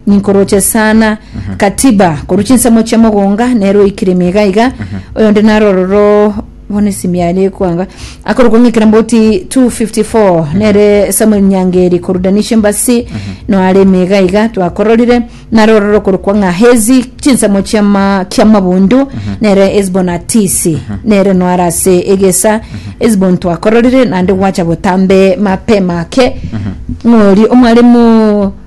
Ninkoroche sana Katiba korwa chinsemo chia mogonga nero oikiremia iga iga oyonde naro ororo bono esimi aria ekwanga akorokwa ng'a ekeramboti 254 nere Samuel Nyangeri korwa Danisha Embassy noaremia iga iga twakororire naro ororo okorokwa ng'a Hezi chinsemo chia ma kia mabundu nere Hesbon Atisi nere noare ase egesa Hesbon twakororire naende gwacha botambe mapema ake ng'ori omwalimu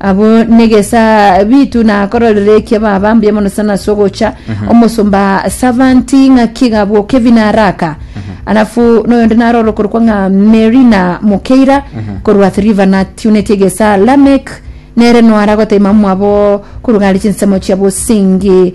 Abwo negesabitu na kororera ekia baba mbuya mono sana ase ogocha omosomba servant ng'aki iga abwo Kevin Araka alafu noyonde narora okorokwa ng'a Mary na Mukeira korwa Athi River na tiuneti egesa Lamek nere noara gotaima mwabo korwa gare chinsemo chia bosingi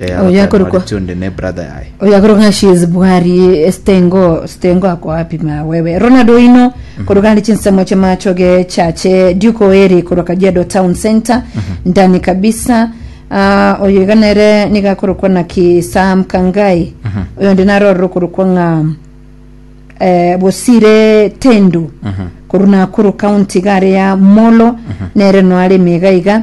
Eh, Oyo abakare akorokwa- Mauritio onde ne brother yaye oyo akoroka ng'a she is bwari estengo stengo ako wapi ma wewe ronald oino koroka ndi chinsemo chia machoge chache duke oeri korwa kajiado town center ndani kabisa Ah, oyo iga nere niga akorokwa naki sam kangai oyo ndi narorera okorokwa ng'a eh, bosire tendu korwa nakuru county gare ya molo nere noareme iga iga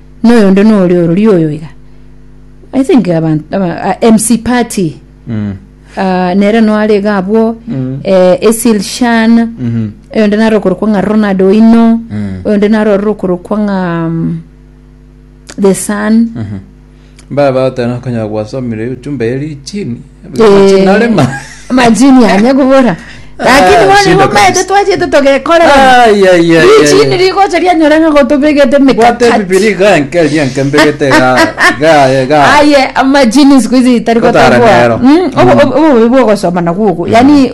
noyondo nore orori oyo iga i think abantu aba- ah, mc party Mm. ah, nere noare iga abwo Mm. eh, esil shan Mhm. oyonde nare okorokwa ng'a ronald oino Mm. oyonde nare ororo okorokwa ng'a mm, the sun Mhm. Baba otana konyara gwasomire echumba eri chini Amachini are ma- majini anya kobora lakini Ah, bono shida igo maete kabisa. twachete togekorera Ai, ai, ai, richini ai. rigocha rianyora ng'a gotobegete Bwate mikakati bibiri iga enke ria enke mbegete iga iga iga aye amajini siku hizi itari Kotara gotagwa nero. Mm, obo- obo- obobe bwogosoma nagwo ogo yani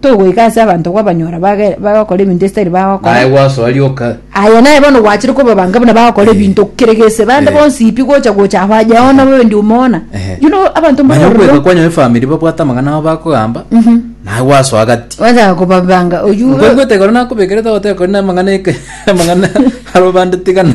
togoika ase abanto gwabanyora bage- bagokora ebinto esitari Naye bagokora gwasoa rioka. aye naye bono gwachire kobabanga buna bagokora Eh. ebinto kere gese bande Eh. bonsi pi gocha gocha aho aye ona bobe ndi omona Ehe. you know abanto Manya okwega mbororo kwanyu efamiri babwate amang'ana abo bakogamba naye gwasoa gati wacha kobabanga oyu nkoigwete ekero nakobekerete ogoteba kore na amang'ana eke amang'ana aro bande tigana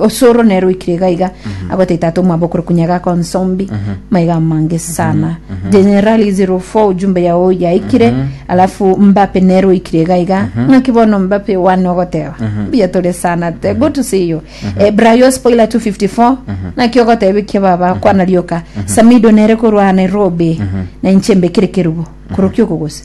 osoro nere oikire iga iga agotei tata omwabo okore kunyaga konsombi maiga amange sana generali 04 ujumbe yao yaikire alafu mbape nere oikire iga iga ng'aki bono mbape one ogoteba mbuya tore sana te good to see you Eh, brayo spoiler 254 naki ogotebikia baba kwana rioka samido nere korwa nairobi na inche mbekire kerubo korokia okogose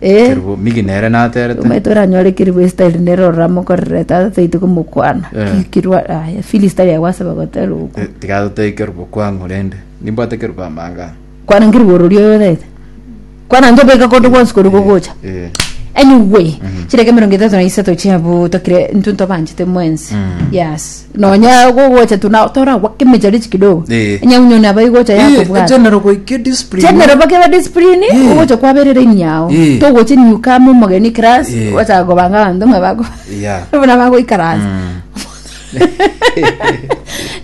Eh. Kerubo migi nere naterete. Omanyete oranyore keribu esitari nere orora mokorere tata taite komokwana Eh. Ki- kirwa aya fili sitari yago asaba gotera oku Eh, tiga totebe kerubo kwang'u rende. Nimbwate kerubo amang'ana. kwana nkeribu orori oyo taete kwana ntobeka kondo gwonsi kori gogocha Eh. anyway chireka emerongo etato na isato chiabo tokire intwe ntobanchete mwensi yes nonya gogocha tu na toragwa kemecharichi kidogo Eh. onye unyo nabo igocha Eh, yakobwata egenero goika ediscipline. chenero bakeba discipline Eh. ogocha kwaberera emiao Eh. togoche new kama omogeni class Eh. gwachaka kobanga abanto ng'a bako Yeah. buna bagoikaransa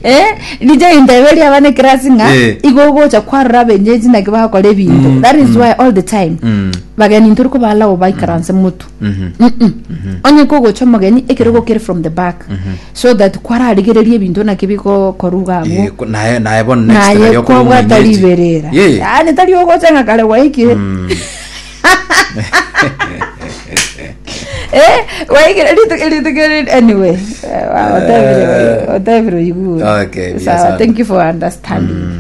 eh nijo intebe ria abana class ng'a Eh. igo ogocha kwarora abenyeji naki bakora ebinto that is why all the time Mm. bageni ntori kobalago baikaranse motu onye kogocha omogeni ekerogo kere from the back so that kwararigererie ebinto naki bigokoruga abwo Eh, ko- naye naye bono next naye nario okore kwabwata omwenyeji. riberera Yeah. yani tari ogocha ng'a kare gwaikire Eh, gwaikire ritu- ritukere- anyway eh, wa- otebire- otebire oigue. Okay, yes, Sawa, one. thank you for understanding